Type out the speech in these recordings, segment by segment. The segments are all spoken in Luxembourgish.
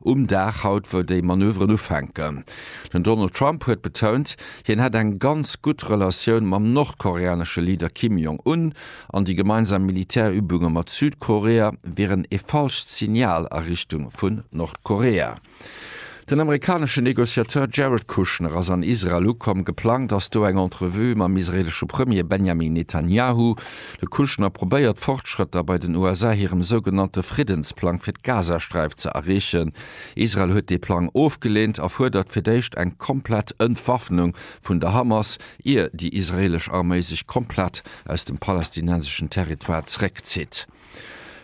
Um Dag haut, wou déi Manöveren ufänken. Den Donald Trump huet betount, hien hätt eng ganz gutt Relatioun mam nordkoreanesche Leader Kim Jong Un an déi gemeinsam Militärübunge mat Südkorea wieren ee falscht Signal a Richtung vun Nordkorea. Den amerikanesche Negociateur Jared Kushner ass an Israel ukomm. Geplangt ass do eng Entrevue mam israeelesche Premier Benjamin Netanjahu. De Kushner probéiert Fortschrëtter bei den USA hirem sougenannte Friddensplang fir d'Gazasträif ze erreechen. Israel huet dee Plang ofgeleent a fuerdert fir d'éischt eng komplett Entwaffnung vun der Hamas, ier déi israeelesch Arméi sech komplett aus dem palästinenseschen Territoire zeréckzitt.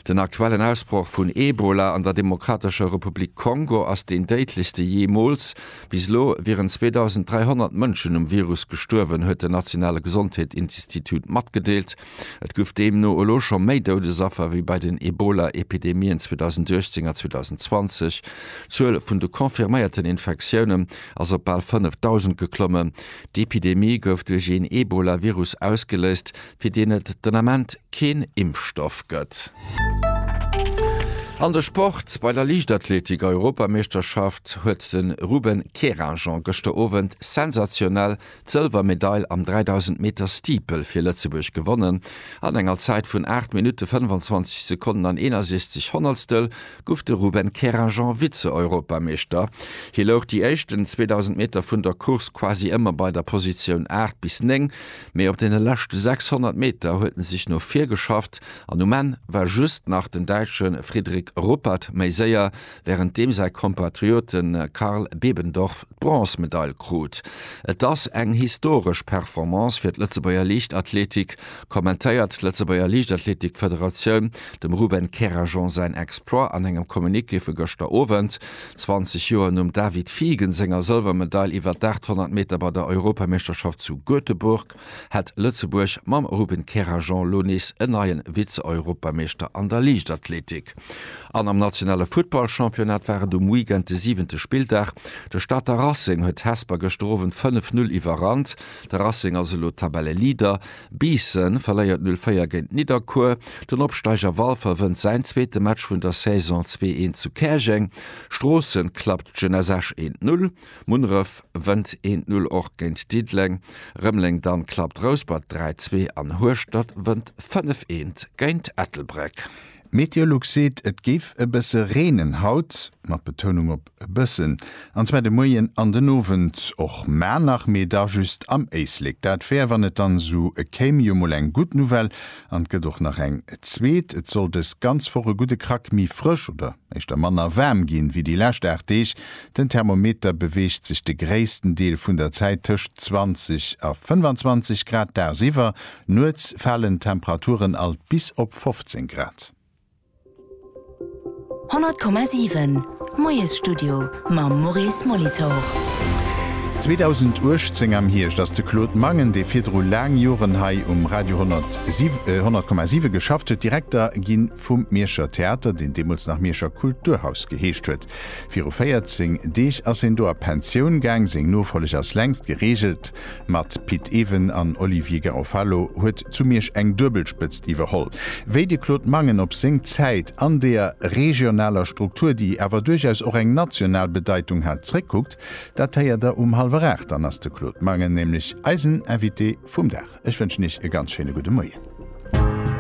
Den aktuellen Ausbroch vun Ebola an der Demokratescher Republik Kongo ass deen déidlechste jeemools. Bis elo wieren 2.300 Mënschen um Virus gestuerwen, huet den nationale Gesondheetsinstitut matgedeelt. Et gouf deemno elo scho méi Doudesaffer wéi bei den Ebola-Epidemien 2018 a 2020. D'Zuel vun de confirméierten Infektiounen ass op bal 5.000 geklommen. D'Epidemie gouf duerch een Ebola-Virus ausgeléist, fir deen et den Ament keen Impfstoff gëtt. An de Sport, Bei der Liichtathletik-Europameeschterschaft huet de Ruben Kerajan gëschter Owend sensationell d'Sëlwermedail am 3000 Meter Steeple fir Lëtzebuerg gewonnen. An enger Zäit vun 8 Minutte 25 Sekonnen an 61 Honnertstel gouf de Ruben Kerajan Vize-Europameeschter. Hie louch déi éischten 2000 Meter vun der Course quasi ëmmer bei der Positioun 8 bis 9. Mee op deene leschte 600 Meter huet en sech no vir geschafft an um Enn war just nach den Däitsche Fridrik Ruppert méi séier, wärend deem säi Kompatriote Karl Bebendorf d'Bronzmedail krut. Et ass eng historesch Performance fir d'Lëtzebuerger Liichtathletik, kommentéiert d'Lëtzebuerger Liichtathletikfederatioun dem Ruben Kerajan säin Exploit an engem Communiqué vu gëschter Owend. 20 Joer nom David Fiegen senger Sëlwermedail iwwer d'Aachthonnert Meter bei der Europameeschterschaft zu Göteborg hätt Lëtzebuerg mam Ruben Kerajan lo nees en neie Vize-Europameeschter an der Liichtathletik. An am nationale Futtballchampionnat war et um Weekend de siwente Spilldag. De Stater Racing huet Hesper gëschter Owend 5, 0 iwwerrannt. De Racing ass elo Tabelleleader. Biissen verléiert 04 géint Nidderkuer. Den Opsteiger Walfer wënnt säin zweete Match vun der Saison 2-1 zu Käerjeng. Stroossen klappt Jeunesse Esch 1-0. Munneref wënnt 1-0 och géint Diddeleng. Rëmeleng dann klappt Rouspert 3-2 an Hueschtert wënnt 5-1 géint Ettelbréck. Meteolux seet et géif e bësse reenen haut, mat Betounung op E bëssen, an zwar de Moien an den Owend och maer nach, mee da just am Éislek. Dat wär, wann et dann esou kéim, jo mol eng gutt Nouvelle. An et gëtt och nach eng zweet, Et soll dës ganz Woch e gudde Krack méi frësch oder éischter manner waarm ginn, wéi déi lescht 8 Deeg. Den Thermometer beweegt sech de gréissten Deel vun der Zäit tëscht 20 a 25 Grad dagsiwwer. Nuets falen d'Temperaturen alt bis op 15 Grad. 100,7 Moiesstudio mam Maurice Molitor. 2018 am Hierscht ass de Claude Mangen, dee virdru laang Joren hei um Radio 100,7 geschafft huet, Direkter gi vum Mierscher Theater, deen deemools nach Mierscher Kulturhaus geheescht huet. Viru 14 Deeg ass hien do a Pensioun gaang, seng Nofolleg ass längst gereegelt. Mat Pit Even an Olivier Garofalo huet zu Miersch eng Duebelspëtzt iwwerholl. Wéi de Claude Mangen op seng Zäit an deer regionaler Struktur, déi awer duerchaus och eng national Bedeitung hat, zréckkuckt, dat héiert der um hallwer aacht. Dann ass de Claude Mangen nämlech eisen Invité vum Dag. Ech wënschen Iech e ganz schéine gudde Moien.